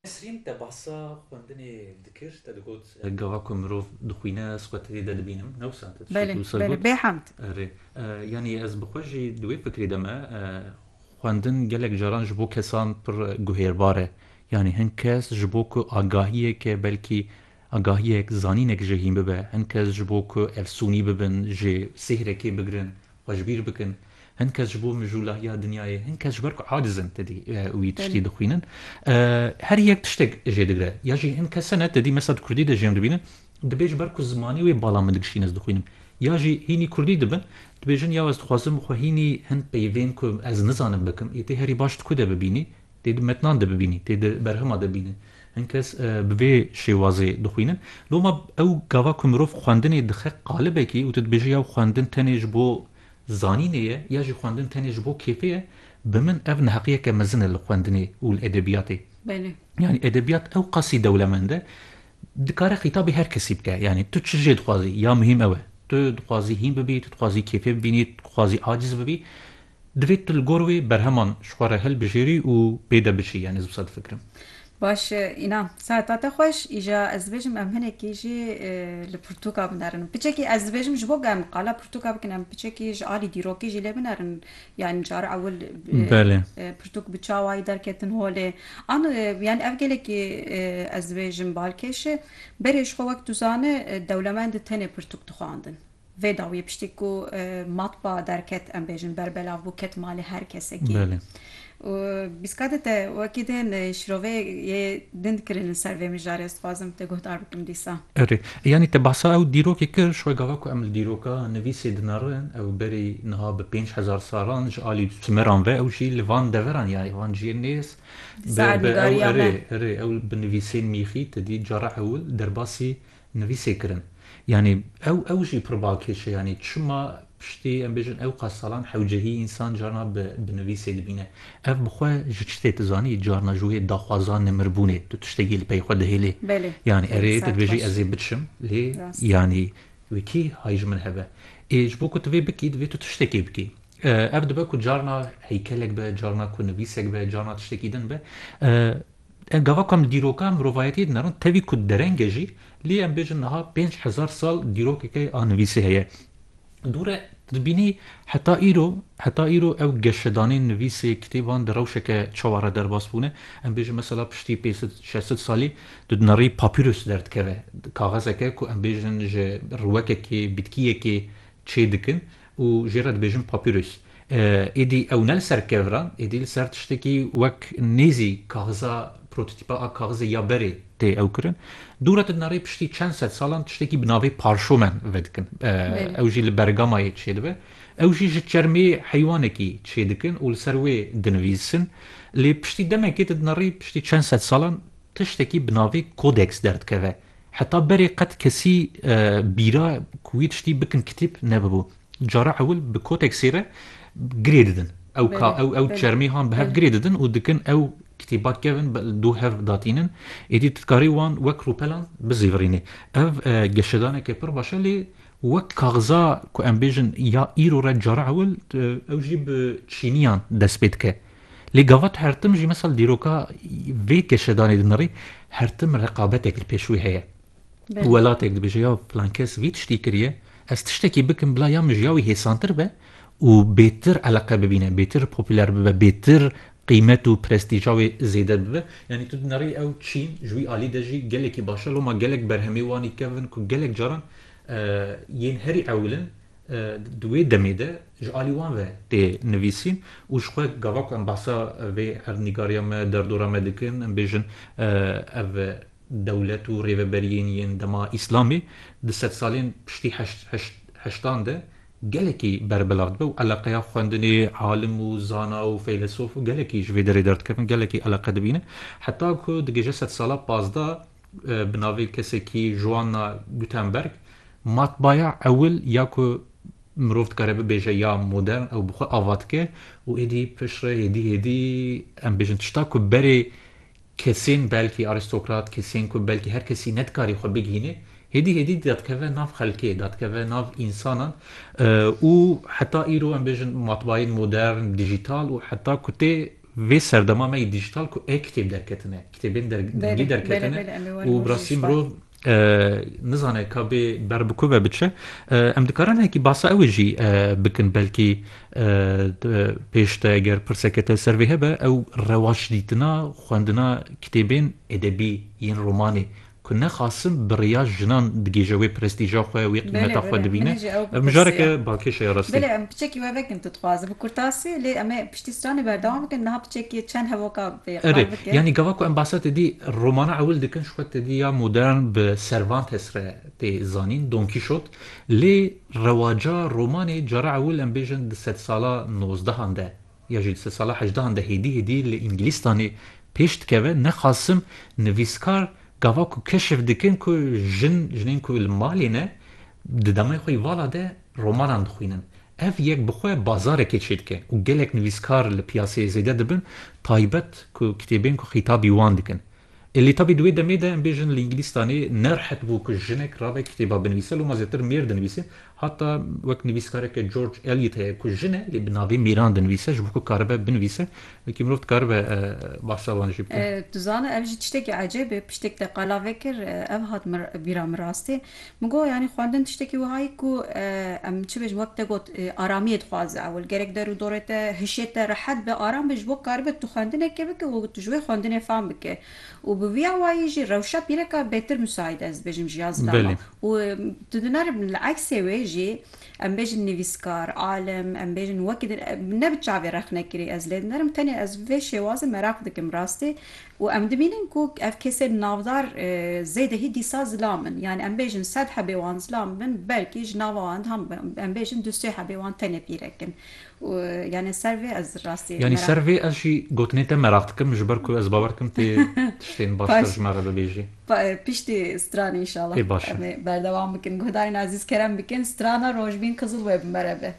Nesrîn te bahsa xwendinê dikir, te digot gava ku mirov dixwîne ez xwe tevî de dibînim, ne wisa te dişitî wisa got. Belê, belê, bêhemd. Erê, yanî ez bi xwe jî di wê fikrê de me, xwendin gelek caran ji bo kesan pir guhêrbar e. Yanî hin kes ji bo ku agahiyeke belkî Agahiyek, zanînek jê hîn bibe. Hin kes ji bo ku efsûnî bibin, jê sihrekê bigirin, xwe ji bîr bikin. Hin kes ji bo mijûlahiya dinyayê, hin kes ji ber ku aciz in tedî wî tiştî dixwînin. Her yek tiştek jê digre. Ya jî hin kes hene tedî mesela di kurdî de jê em dibînin, dibê ji ber ku zimanê wê bala min digişîn ez dixwînim. Ya jî hînî kurdî dibin, dibêjin yaw ez dixwazim xwe hînî hin peyvên ku ez nizanim bikim, yê tê herî baş di ku de bibînî. Tê di metnan de bibînî, tê di berhema de bînî. Hin kes bi vê şêwazê dixwînin. Loma ew gava ku mirov xwendinê dixe qalibekî û tu dibêjî ya xwendin tenê ji bo zanînê ye ya jî xwendin tenê ji bo kêfê ye, bi min ev neheqiyeke mezin e li xwendinê û li edebiyatê. Belê. Yanî edebiyat ewqasî dewlemend e, dikare xîtabî her kesî bike. Yanî tu çi jê dixwazî, ya muhîm ew e. Tu dixwazî hîn bibî, tu dixwazî kêfê bibînî, tu dixwazî aciz bibî. Divê tu li gor wê berheman ji xwe re hilbijêrî û pê de biçî yanî ez wisa difikirim. Baş e Înan. Saeta te xweş. Îja ez dibêjim em hinekî jî li pirtûka binerin. Piçekî ez dibêjim ji bo ku em qala pirtûka bikin em piçekî ji alî dîrokê jî lê binerin. Yanî cara ewil pirtûk bi çawayî derketin holê. An yanî ev gelekî ez dibêjim balkêş e. Berê ji xwe wek duzane dewlemend tenê pirtûk dixwandin. Vê dawiyê piştî ku matba derket em bêjin ber belav bû ket malê her kesekî û bîskadê te wekî tên şirovê yê din dikirin li ser vê mijarê ez dixwazim te guhdar bikim dîsa. Erê yanî te behsa ew dîrokê kir ji we gava ku em li dîroka nivîsê dinerin ew berî niha bi pênc hezar salan ji alî simeran ve ew jî li van deveran ya van ciyê nêz bi ew erê erê ew bi nivîsên mîxî te dî cara ewil derbasî Nivîsê kirin. Yanî ew ew jî pir balkêş e. Yanî çima piştî em bêjin ewqas salan hewcehî însan carna bi bi nivîsê dibîne. Ev bi xwe ji çi tê tu zanî? Carna ji wê daxwaza nimirbûnê tu tiştekî li pey xwe dihêlî. Belê. Yanî erê tu dibêjî ez ê biçim lê Rast. yanî wê kî hay ji min hebe. Ê ji bo ku tu vê bikî divê tu tiştekê bikî. Ev dibe ku carna heykelek be, carna ku nivîsek be, carna tiştekî din be. Em gava ku em dîroka mirovayetiyê dinarin tevî ku dereng e jî, lê em bêjin niha pênc hezar sal dîrokeke a nivîsê heye. Dûre dibînî heta îro heta îro ew geşedanên nivîsê kitêban di rewşeke çawa re derbas bûne. Em bêjin mesela piştî pêsid şesid salî di dinarî papîrus derdikeve. Kaxezeke ku em bêjin ji riwekekê, bitkiyekê çê dikin û jê re dibêjin papîrus. Êdî ew ne li ser kevr a, êdî li ser tiştekî wek nêzî kaxiza prototîpa a kaxizê ya berê tê ew kirin. Dû re tedna rê piştî çend sed salan tiştekî bi navê parşomen vedikin. Ew jî li bergamayê çêdibe. Ew jî ji çermê heywanekî çêdikin û li ser wê dinivîsin. Lê piştî demekê tedna rê piştî çend sed salan tiştekî bi navê kodeks derdikeve. Heta berê qet kesî bîra ku wî tiştî bikin kitîb nebibû. Cara ewil bi kotek sêre girê didin. Ew ka ew ew çermê han bi hev girê didin û dikin ew kitîba kevin dû hev datînin. Êdî tu dikarî wan wek rûpelan bizîvirînî. Ev geşedaneke pir baş e lê wek kaxiza ku em bêjin ya îro re cara ewil ew jî bi çîniyan dest pê dike. Lê gava tu hertim jî misal dîroka vê keşedanê dinirî hertim reqabetek li pêş wê heye. Welatek dibêje ya filan kes vî tiştî kiriye, ez tiştekî bikim bila ya min ji ya wî hêsantir be û bêtir eleqe bibîne, bêtir popûler bibe, bêtir qîmet û prestîja wê zêde bibe. Yanî tu dinerî ew çîn ji wî alî de jî gelekî baş e. Loma gelek berhemê wan î kevin ku gelek caran yên herî ewil in Di wê demê de ji alî wan ve tê nivîsîn û ji xwe gava ku em behsa vê erdnîgariya me, derdora me dikin, em bêjin ev dewlet û rêveberiyên yên dema îslamê di sedsalên piştî heştan de gelekî berbilav dibe û eleqeya xwendinê alim û zana û feylesof gelekî ji vê derê derdikevin, gelekî eleqe dibînin heta ku digihîje sedsala pazdeh Bi navê kesekî Joanna Gutenberg, matbaya ewil ya ku mirov dikare bibêje ya modern ew bi xwe ava dike û êdî piştre hêdî hêdî em bêjin tişta ku berê kesên belkî arîstokrat, kesên ku belkî her kesî nedikarî xwe bigihîne hêdî hêdî dadikeve nav xelkê, dadikeve nav însanan û heta îro em bêjin matbayên modern, dijîtal û heta ku tê. Vê serdema me yê dîjîtal ku e-kitêb derketine, kitêbên dengî derketine û bi rastî mirov nizane ka bê ber bi ku ve biçe. Em dikarin hekî basa ew ê jî bikin belkî pêş de eger pirseke te ser vê hebe ew rewaçdîtina xwendina kitêbên edebî yên romanê ku nexasim bi riya jinan digihîje wê prestîja xwe, wê qîmeta xwe dibîne, ev mijareke balkêş e ya rastî. Belê, em piçekî we vekin tu dixwazî bi kurtasî, lê em ê piştî stranê berdewam bikin, niha piçekî çend hevoka bê qal bikin. Erê, yanî gava ku em basa te dî romana ewil dikin, ji xwe te dî ya modern bi Cervantes re tê zanîn, Don Kîşot, lê rewaca romanê cara ewil em bêjin di sedsala nozdehan de Ya jî di sala hejdehan de hêdî hêdî li Îngilîstanê pêş dikeve, ne Qasim nivîskar gava ku keşif dikin ku jin, jinên ku li malê ne di demeyê xwe yî vala de romanan dixwînin. Ev yek bi xwe bazarekê çêdike û gelek nivîskar li piyaseyê zêde dibin, taybet ku kitêbên ku xîtabî wan dikin. Êlî tabî di wê demê de em bêjin li Îngilîstanê ne rihet bû ku jinek rabe kitêba binivîse, loma zêtir mêr dinivîse. Heta wek nivîskareke George Eliot heye ku jin e lê bi navê mêran dinivîse ji bo ku karibe binivîse wekî mirov dikaribe bahsa wan jî bike. Tu zana ev jî tiştekî ecêb e, piştî te qala vekir ev hat bîra min rastî. Min got, Yanî xwendin tiştekî wiha ye ku em çi bêjin wek te got aramiyê dixwaze ewil. Gerek der û dorê te hişê te rehet be, aram be ji bo karibe tu xwendinekê bike û tu ji wê xwendinê fam bike. Û bi vî awayî jî rewşa pîreka bêtir misaîd e ez dibêjim ji ya zidana. Û tu di nari li eksê wê jî em bêjin nivîskar, alim, em bêjin wekî din ne bi çavê rexnekirî ez lê dinerim tenê ez vê şêwazê meraq dikim rastî Û em dibînin ku ev kesên navdar zêdehî dîsa zilam in. Yanî em bêjin sed hebê wan zilam bin, belkî ji nava wan de em bêjin du sê hebê wan tenê pîrek in. Û yanî ser vê ez rastî meraq. Yanî ser vê ez jî gotinên te meraq dikim, ji ber ku ez bawer dikim tu tiştên baştir ji me re bibêjî. Piştî stranê înşallah. Ê baş e. Em ê berdewam bikin. Guhdarên ezîz kerem bikin strana Rojbîn Qizilwê bi me re be.